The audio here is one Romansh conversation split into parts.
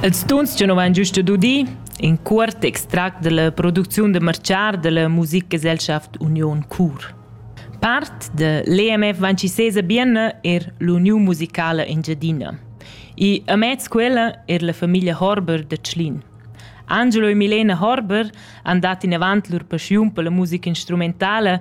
Els tuns che nu vain giusto dudi, in cuort extract dalla producziun da marchar dalla musikgesellschaft Union Chur. Part da l'EMF Vancisese Bienna er l'Uniun musicala Engiadina. I amez quella er la famiglia Horber da Tschlin. Angelo e Milena Horber han dat in avant lur paschiun per la musica instrumentala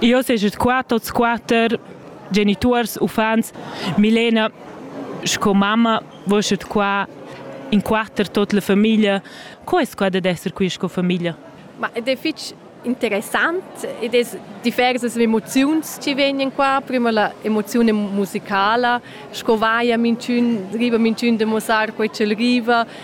Io seget qua tots quatter genituors, uffants. Milena sco mamma voschet qua in quatter tot la famiglia. Co es quai dad esser qui sco famiglia? Ma ed è fich interessant ed es diversas emoziuns chi vegnan qua. Prima la emoziun musicala, sco vaia minchün, riva minchün da muossar quai ch'el riva,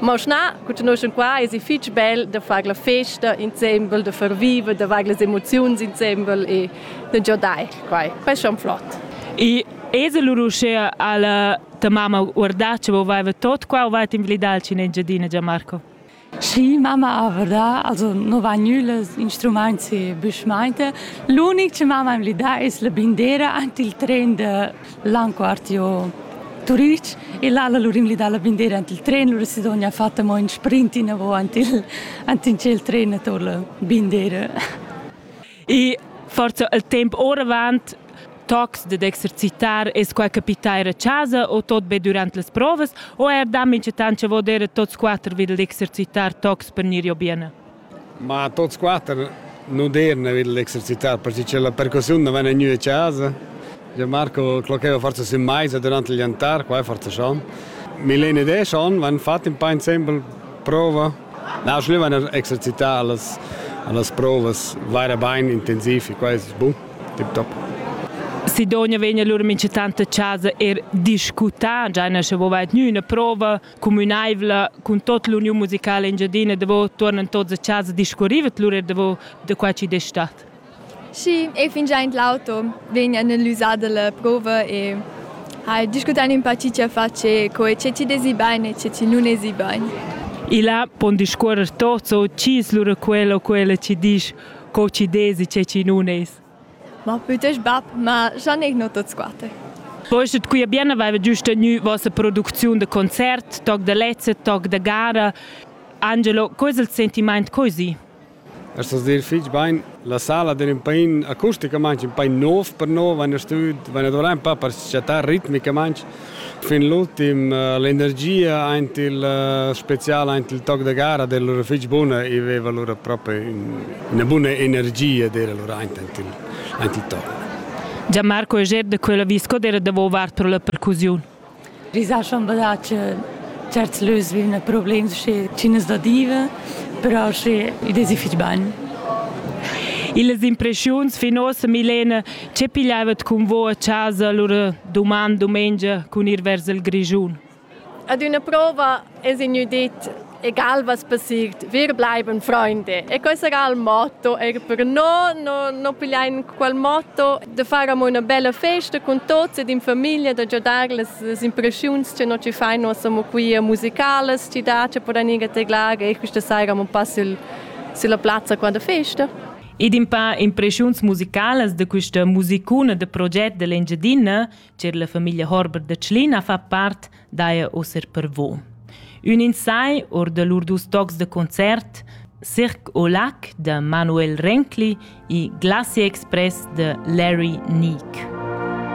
Ma schna, cugnuschen qua es i fich bel da far la festa insembel, da far viver, da far las emoziuns insembel e da giodair quai. Questo è flott. E es lur uschea alla ta mamma guardà che volveva tot qua o va invlidar in Engiadina Gianmarco? Sì, mamma guarda, also non va nules instrumenti büschmeinte. L'unic che mamma invlidà es la bindera ant il tren de L'anquartio Turich e l'ala lur imli dalla bindera ant il tren, lura Sidonia ha fatto mo in sprint inavo ant il ant in tschel tren ator la bindera. E forza il temp oravant tocs dad exercitar es qua capitair a casa o tot be durant las provas o er da minchatant cha vo der a tots quatter vi d'exercitar tocs per gnir jo bene. Ma tots quatter nu deirn avair l'exercitar perche che la percussiun nu vaina gnü a chasa. Giò Marco clocheva forsa sün maisa durant il jantar, qua forsa schon. Milena ed eu schon van fat ün pa insembel prova. Na, sch'nü vaina exercità a las, a las provas vaira bain intensiv e quai es bun, tip top. Sidonja vegna lura minchatant a chasa eir discutà, già nasce vo vair gnü üna prova cumünaivla cun tot l'uniun musicala engiadina davo tuornan tots a casa a discurriva lur er davo da qua chi d'es stat. Schi, e fingià in l'auto vegn analysà dalla prova e hai discutan un po chi ci face, co ce ci desi bain e ce ci nun esi bain. E là pon discuorrer tots o chi es lura quella o quella ci disch co ci desi ce ci nun es. Ma bütg bap, ma già n'he gnü tuot squatter. Poi sche quia bien aveva giust tgnü vossa producziun da concert, toc da lezza, toc da gara. Angelo, co es il sentimaint così? Es das dir fich bain. La sala d'ün pain acusticamaing ün pain nouv per no, vain a stüd, vain a dovrar ün pa per chattar ritmicamaing. Fin l'ultim eh, l'energia aint il eh, spezial aint il toc da gara del lur fich buna i veva lura proprio una buna energia d'era lura aint aint il, aint il toc. Gianmarco Eger de quella visco era davo vart pro la percusiun. Risascian da che certs lös vivna problemi sche cinas da diva, però sche i desi fich bagn. Illas impressiuns fin ossa Milena Che pigliaivat cun vo a chasa lura duman dumengia cun ir vers il Grischun? Ad üna prova es ignü dit egal was passiert, wir bleiben Freunde. E questo era il motto, era per no, no, no pigliain quel motto da fare una bella festa con tutti ed in famiglia, da giodare le impressioni che noi ci fai, noi siamo qui musicales, ci dà, ci poran ir a teglare e questa sera abbiamo passato sulla piazza quella festa. Ed in pa impreschiuns musicalas da questa musicuna da proget dell'Engiadina, cer la famiglia Horber da Tschlina fa part, daia oser per vo. Un insai or da lur dus tocs de concert, Cirque au Lac de Manuel Renkli e Glacier Express de Larry Neek.